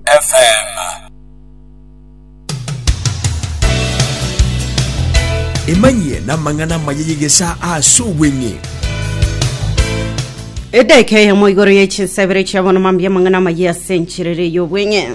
FM. Emanyie n'amang'ana amaya y'egesaa ase obweng'e. edeka eyemo igoro ya chinsebere chia bono mambia amang'ana amaya ase enchirere y'obweng'e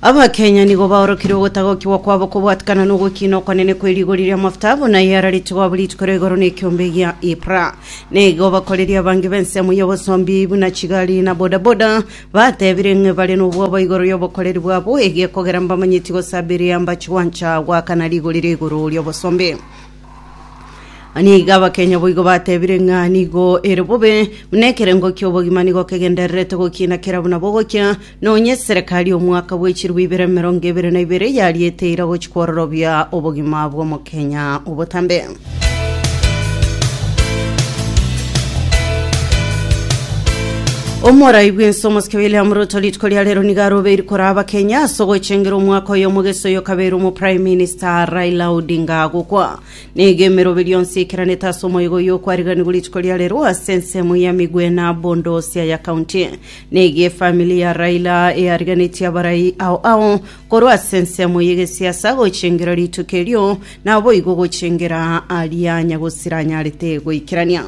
abakenya nigo baorokire ogotagokiwa kwabo kobwatikana na ogokina okwanene kwe rigori ria mafuta buna yararete gwabo rituko ria igoro na ekiombe gia ipra nigo bakoreria abange b'ensemo y'obosombi buna chigari na bodaboda Batebire ng'a bare nobwoba igoro y'obokoreri bwabo, egiekogera mbamanyeti gosabiria mbache gwancha goakana rigori ria igoro ri'obosombe. Nigo abakenya boigo batebire ng'a nigo ere bobe, buna ekerengo ki'obogima nigo kegendererete gokina kera buna bogokia, nonya eserekari y'omwaka bwe chiribu ibere emerongo ebere na ibere yariete eira gochia kwororobia obogima bw'omokenya obotambe. Omorai bw'ense omosike William Ruto rituko ria rero nigo arobeiri koraa abakenya ase ogochengera omwaka oyo omogeso oyo kabeire omo Prime Minister Raila Odinga agokwa. Nigo emerobe rionsi eikeranete ase omoigo oyo okwariganigwa rituko ria rero ase ensemo ya Migwena bondo ase aya county. Nigo efamili ya Raila eariganetie abarai ao ao Korwa ase ensemo y'egesiasa gochengera rituko erio, naboigo gochengera aria nyagosira anyarete goikerania.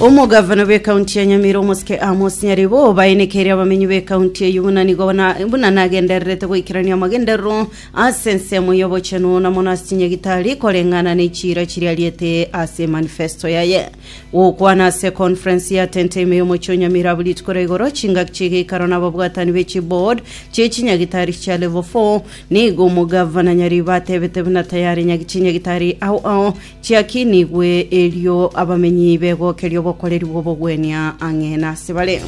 Omogavana bw'ekaunti ya Nyamira omosike Amos Nyaribo obaenekeire abamenyi b'ekaunti eyio buna nigo na- buna nagendererete goikerania amagenderero ase ensemo y'obochenu na mono ase chinyagitari koreng'ana ne chiira chiriariete ase manifesto yaye. Gokwana ase econference ya tente ime y'omochie o Nyamiirabu rituko ria igoro, chingaki chi'egeikaro na ababwatani be chiboard chie chinyagitari chia level four. Nigo omogavana nyariiba atebete buna tayari nyagi chinyagitari ao ao chiakinigwe erio abamenyi begokeria obokoreri bw'obogwenia ang'e nasebare.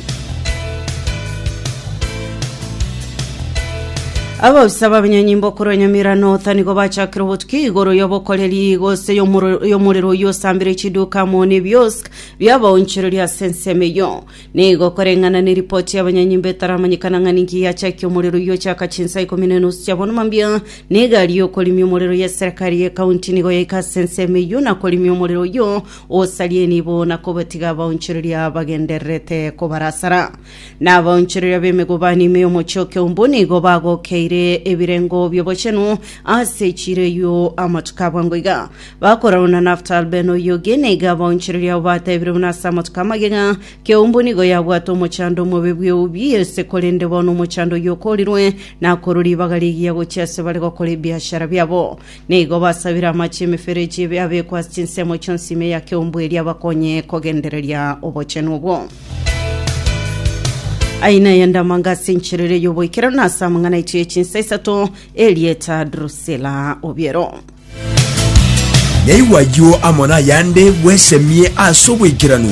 Abausa b'abanyenyimba okorwa Nyamira North nigo bachakire obotuki igoro y'obokoreri gose y'omoro- y'omorero oyio osambire chiduka amo n'ebiosk bi'abaonchoreria ase ensemo eyio. Nigo koreng'ana neripoti y'abanyenyimba etaramanyekana ng'a ninki yachakia omorero oyio ochaka chinsa ikomi na enusu chia bono mambia na egari y'okorimia omorero y'eserekari y'ekaunti nigo yaika ase ensemo eyio na korimia omorero oyio osaria enibo na kobatiga abaonchoreria bagendererete kobarasara. na abaonchoreria b'emegubani ime y'omochie o Keumbu nigo bagokeire ebirengo bi'obochenu ase echiira eyio amatuko aa bwango iga. Bakorarwa na Naftal Ben Oyugi, na iga abaonchoreria abo batebirie buna ase amatuko amagega, Keumbu nigo yabwate omochando omobe bw'eubi y'eise, korende bono omochando oyio okoorirwe, nakorwa ribaga rigiya gochia ase bare gokora ebiashara biabo. Nigo basabire amache y'emeferechi ebe abekwe ase chinsemo chionsi ime ya keumbu eria abakonye kogendereria obochenu obwo. Aye naye ndamanga ase enchera eria y'oboikeranu na ase amang'ana aito ye chinsa isato erieta Drusila obiero. Yaigwa ayio amo n'ayande bwesemie ase oboikeranu.